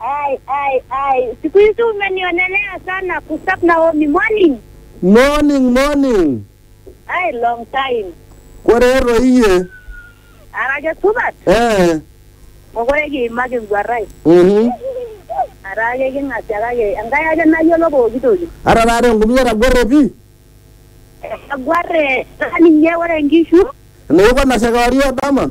Ai, ai, ai. Siku hizi umenionelea sana Gustav Naomi. Morning. Morning, morning. Ai, long time. Korero iye. Arake supat. Eh. Mokore kiimaki enguarrai. Mhm. Arake king'asia kake Enkai ake nayiolo pooki toki. Ara taata enkumia etagore pi. Eguarre naa ninye ore nkishu. Neiko nasha kewarie o dama.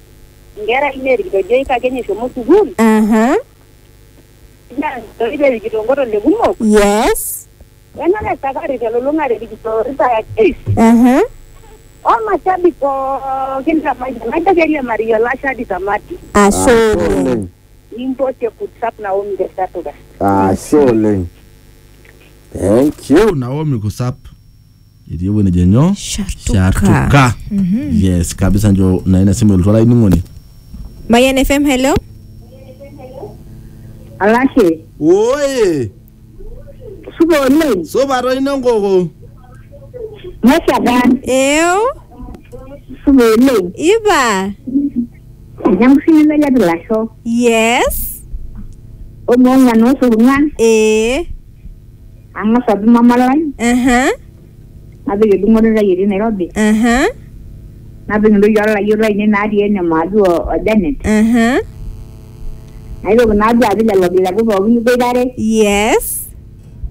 inkera ainei irkitojoik kake enye eshomo sukuul aha naa ntoki pee erikito nkotolle kumok yes enare esakari telulung'ata erikito irpayek pis aha omashabi pookin te mayian najo keiriamariyie olashe hadi tamati ashe oleng nimpotie kutsap naomi te satuka ashe oleng thank you naomi kusap etii ewueji nejo nyoo Shartuka. shartuka yes kabisa njo na ina simu elotu olainining'oni Mayan FM, hello. Alashe, oye supa oleng, supa toi nenkoko neshaga, Ew, supa oleng, iba. enyamusini melet ilasho, Yes. omoong'an osurung'an, Ee. Ang'as atum mama lai, Aha, napik edung'oto ai etii Nairobi, aha, napik intoyie olayiok lainei natii ene Maadu o o Janet, aha. naitoki naa duo apik lelo kileku pookin liboitare, Yes.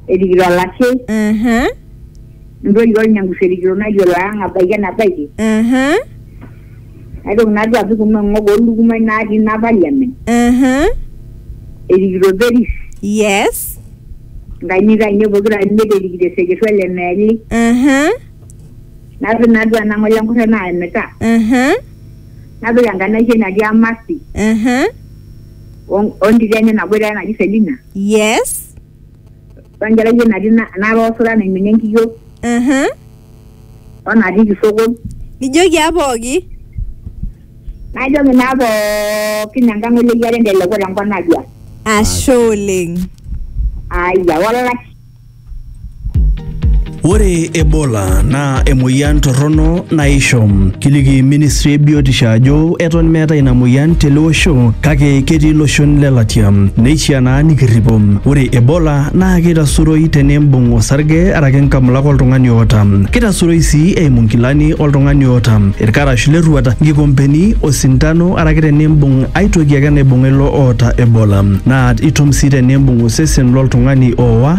erikito olashe, Aha, intoyie olnyangusu erikito nayiolo ang abaiki enabaiki. aha. Naitoki naa duo apik kuna ng'ok oo lukumai natii ina parliament Aha. erikito Peris Yes. nkainit ainei pokira are imiet erikito eseketua le Meeli Aha. napik naa duo ena ng'ole enkurre naa emita Aha. napik enkanashe natii Amasi Aha. o o ntito enye naboitare naji Selina Yes. we nkerai ai natii na- naata osura naiminie enkiyio Aha. o natii kisokon Nijoki aa pooki. najoki naa pookin enkang oleyiare enteleku tenkop najua Ashe oleng. aya olashe Ore Ebola naa emoyian torrono naisho. Kiliki ministry e biotisho ajo eton meeta ina moyian tele osho kake ketii iloshon le latia. Neishiaa naa nikirripo. Ore Ebola naa keitasuroi tenimbung osarge araki nkamulak oltung'ani oota. Keitasuroi sii eimu nkilani oltung'ani oota, ilkarash le rruat, nkikompeni, osintano araki tenimbung ai toki ake naibung'a ilo oota Ebola. Naa itum sii tenimbung osesen loltung'ani ooa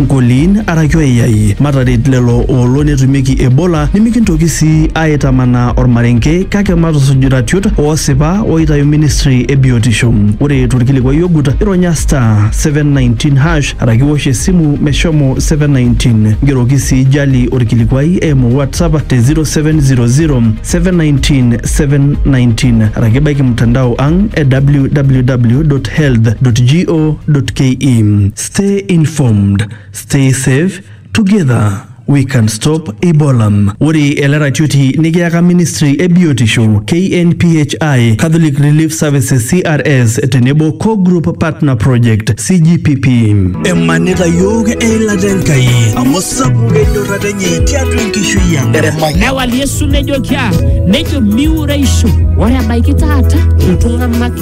Nkoliin araki oiyai, mataret lelo oolo netumieki Ebola nimikintoki sii aaitamanaa olmarenke kake matusuj iratiot oosipa ooitayu ministry e biotisho. Ore tolkilikuai ogut, ironya *719# araki iwosh esimu meshomo 719. Ngeroki sii Jali olkilikuai eimu WhatsApp te 0700-719-719 araki baiki mtandao ang e www.health.go.ke. Stay informed, stay safe, together we can stop Ebola. Ore ele ratioti nikiyaka Ministry e Biotisho, KNPHI, Catholic Relief Services CRS tenebo Core Group Partner Project CGPP. emanita yiok eilata enkai amu sapuk enyorrata enye tiatua enkishui ang Newal Yesu nejo kia, nejo miureisho. Ore ebaiki taata iltung'anak